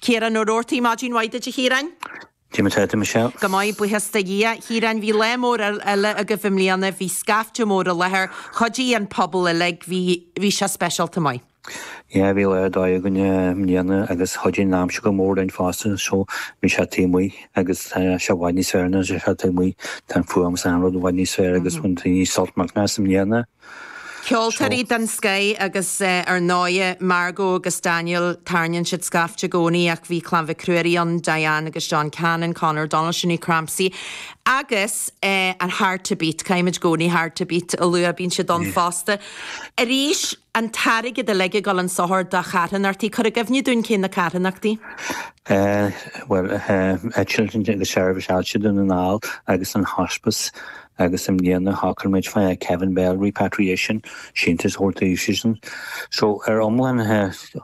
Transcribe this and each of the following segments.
Ciarán Mac Ruairí Maidin mhaith duit a Chiaráin. Dé mar atá tú Michelle. Go maith, buíochas do Dhia. Chiaráin, bhí lá mór eile agaibh i mbliana, bhí scaifte mór i láthair, chuidigh an pobal uilig, bhí, bhí sé speisialta maith. Á, bhí lá ar dóigh againn i mbliana agus chuidigh an aimsir go mór linn fosta, so bhí sé taobh amuigh agus tá sé i bhfad níos fearr nuair atá sé taobh amuigh, tá an fuaim is an rud i bhfad níos fearr agus bhain daoine sult millteanach as i mbliana. Ceoltóirí den scoth agus ar ndóigh Margo agus Daniel, tarraingíonn siad scaifte i gcónaí ach bhí Clann Mhic Ruairí ann, Diane agus John Cannon, Conor O'Donnell, Sinéad Crampsie agus an Hard to Beat, caithfimid i gcónaí Hard to Beat a lua, bíonn siad ann fosta. Arís, an t-airgead uilig ag dul chun sochair do charthanachtaí, cuir i gcuimhne dúinn cé na carthanachtaí? Bhuel, Cill Dé agus Seirbhís Ailse Dhún na nGall agus an Hospice. Agus i mbliana shocraigh muid faoi Kevin Bell Repatriation, síntiús a thabhairt daofasan. So, ar iomlán,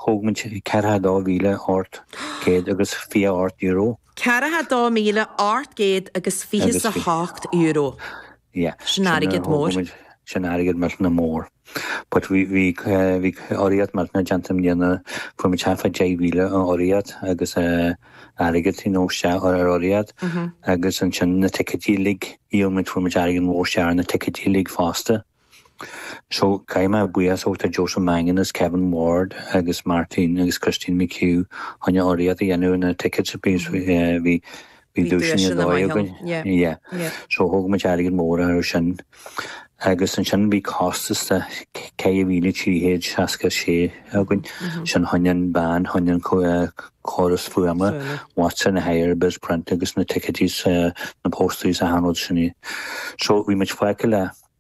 thóg muid ceathracha dó mhíle ocht gcéad agus fiche ocht euro. Ceathracha dó mhíle ocht gcéad agus fiche 's a hocht euro. Yeah. Sin airgead mór. Sin airgead millteanach mór. But we, bhí, bhí urraíocht mhaith déanta i mbliana, fuair muid suas le deich mhíle ó urraíocht agus eh, airgead, you know, sea, ar ar urraíocht. Agus ansin na ticéidí uilig, dhíol muid, fuair muid airgead mhór, sea, ar na ticéidí uilig fosta. So, caithfidh mé buíochas a thabhairt do Joseph Mangan agus Kevin Ward agus Martin agus Christine McHugh chun urraíocht a dhéanamh ar na ticéid, so bhí, eh, bhí, Bhí duaiseanna ar dóigh againn, yeah. So thóg muid airgead mór air sin agus ansin bhí costas de €4,366 againn. Sin choinne an van, choinne an córas fuaime, marquee hire Bizzprint agus na ticéidí, na posters 's an cineál sin. So bhí muid fágtha le.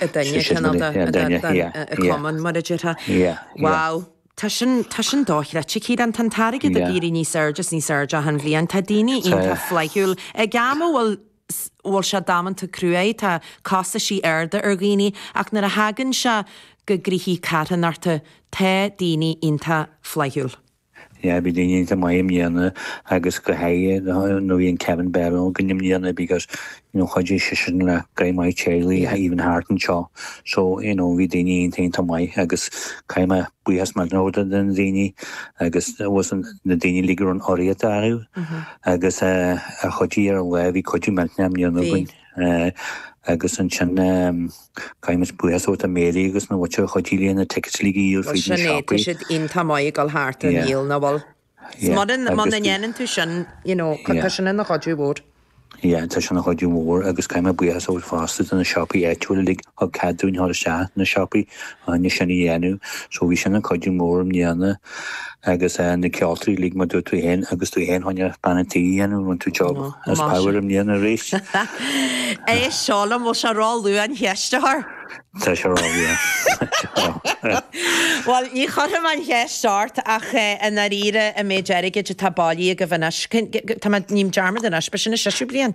Duine Ceanada, an cumann, mar a déarfaí. Wow. Tá sin, tá sin dochreidte, Ciarán. Tá an t-airgead ag éirí níos airde is níos airde achan bhliain. Tá daoine iontach flaithiúil. Ag am a bhfuil, bhuel, sé damanta cruaidh, tá costaisí arda ar dhaoine, ach nuair a thagann sé go gcríochaí carthanachta, tá daoine iontach flaithiúil. Yeah bhí daoine iontach maith i mbliana agus go háirithe nuair a bhí an Kevin Bell againn i mbliana because you know chuidigh seisean le go maith teaghlaigh Yeah. even thart anseo so you know bhí daoine iontach maith agus caithfidh mé buíochas mór a thabhairt do na daoine agus na daoine uilig a raibh an urraíocht acu agus eh, a chuidigh ar an lá bhí cuidiú millteanach i mbliana Bhí. againn. Agus ansin, caithfidh mé buíochas a thabhairt do Mary agus na fir a chuidigh leis na tickets uilig a dhíol fríd na siopaí. Bhuel sin é, tá siad iontach maith ag dul thart á ndíol, nach bhfuil? Yeah. Muna ndéanann tú sin, you know, tá sin ina chuidiú mhór. Yeah, tá sin ina chuidiú mhór agus caithfidh mé buíochas a thabhairt fosta do na siopaí áitiúla uilig. thug cead dúinn dhul isteach na siopaí ná sin a dhéanamh so bhí sin ag cuidiú mór i mbliana agus eh na ceoltóirí like mar a dúirt tú fhéin agus tú fhéin tháinig bean an tí a dhéanamh rinne tú job as power i mbliana arís. Inis liom bhfuil sé róluath an cheist a chur. Tá sé róluath. Bhuel ní chuirfidh mé an cheist ort ach eh i ndáiríre an méid airgid atá bailithe agaibh anois cén tá mé ním dearmad anois ba sin a séú bliain?